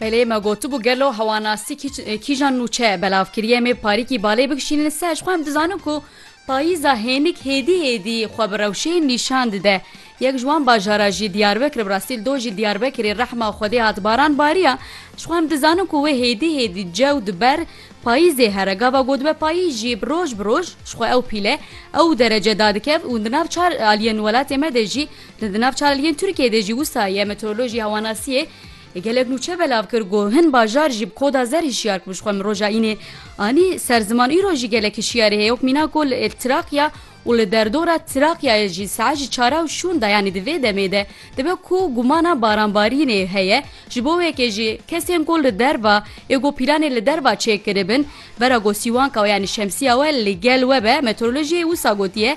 Belê me gotibû gelo hewanasî kîjan nûçe belav kiriye mê parîkî balê bikişînin ser ji xwe em dizanin ku payîza hênik hêdî hêdî xwe bi rewşeyên nîşan dide. Yek ji wan bajara jî Diyarbekir bi rastî li dojî Diyarbekirê rehma Xwedê hat baran bariya ji xwe em dizanin ku wê hêdî hêdî cew diber payîzê here gava got be payî jî bi roj bi roj ji xwe ew pîle ew derece dadikev û di nav çar aliyên welatê me de jî Di nav çalakiyên Tirkiyeyê de jî wisa ye Meteorolojî Hewanasiyê gelek nûçe belav kir ku hin bajar jî bi koda zer hişyar bûn ji xwe min roja înê anî ser ziman îro jî gelek hişyarî heye wek mîna ku li Trakya û li derdora Trakyayê jî saet ji çara û şûn de yanî di vê demê de dibe ku gumana baranbarînê heye ji bo wekê jî kesên ku li derva ê ku pîlanê li derva çêkiribin vera ku sîwanka we yanî şemsîya we li gel we be Meteorolojîyê wisa gotiye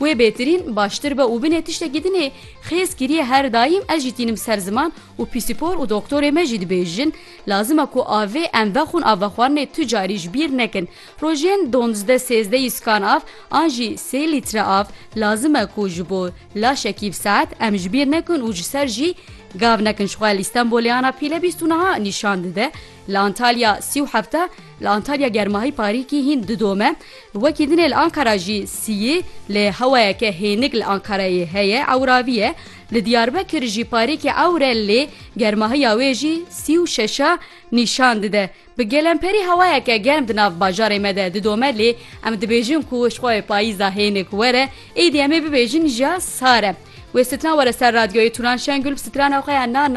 Wê bêtirîn baştir be û binê tiştekî din ê xêz kirîye her daîm ez jî tînim ser ziman û pîsîpor û doktorê me jî dibêjin lazim e ku avê em vexwin a vexwarinê tu carî ji bîr nekin rojên donzde sêzde yîskan av an jî sê lître av lazim e ku ji bo laşekî bi saet em ji bîr nekin û ji ser jî gav nekin ji xwe li Îstenbolê ana pîle bîst û niha nîşan dide li Antalya sî û hefte li Antalya germahî parîkî hîn didome. Wekî din ê li Ankara jî sîyî lê hewayeke hênik li Ankarayê heye ewravî ye. Li Diyarbekir jî parêkî ewr e lê germahiya wê jî sî û şeşa nîşan dide. Bi gelemperî hewayeke germ di nav bajarê me de didome lê em dibêjin ku jixwe wê payîza hênik were êdî em ê bibêjin jîya sar e. Wê sitran were ser radyoyê Turan Şengül bi sitrana xwe ya na na.